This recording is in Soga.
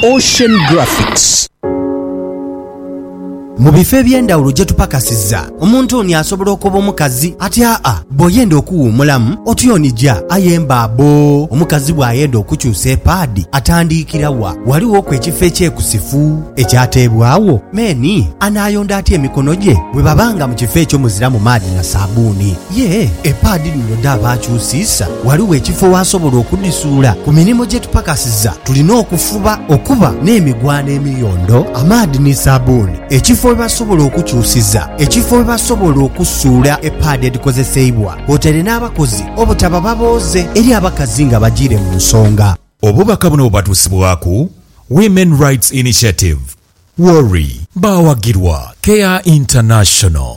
Ocean Graphics. Mu bifo eby'endhawulo gye tupakasiza, omuntu oni asobola okoba omukazi ati, Aa, bw'oyenda okuwuumulamu, otyonija. Aye mbaabo! Omukazi bw'ayenda okukyusa epaadi, atandiikira wa? Ghalighoku ekifo ekyekusifu ekyateebwagho? Meeni anaayonda atya emikono gye bwe baba nga mu kifo ekyo muziramu maadhi na saabbuuni? Yee, epaadi dhino dhaaba akyusiisa, ghaligho ekifo w'asobola okudhisuula. Ku mirimo gye tupakasiza, Tulina okufuba okuba n'emigwano emiyondo, amaadhi ni sabuuni, ekifo we basobola okukyusiza, ekifo we basobola okusuula epaadi edhikozeseibwa kwotaire n'abakozi obutaba babooze eri abakazi nga bajiire mu nsonga. Obubaka buno bubatuusibwaku Women Rights Initiative, WORI. Baawagirwa Care International.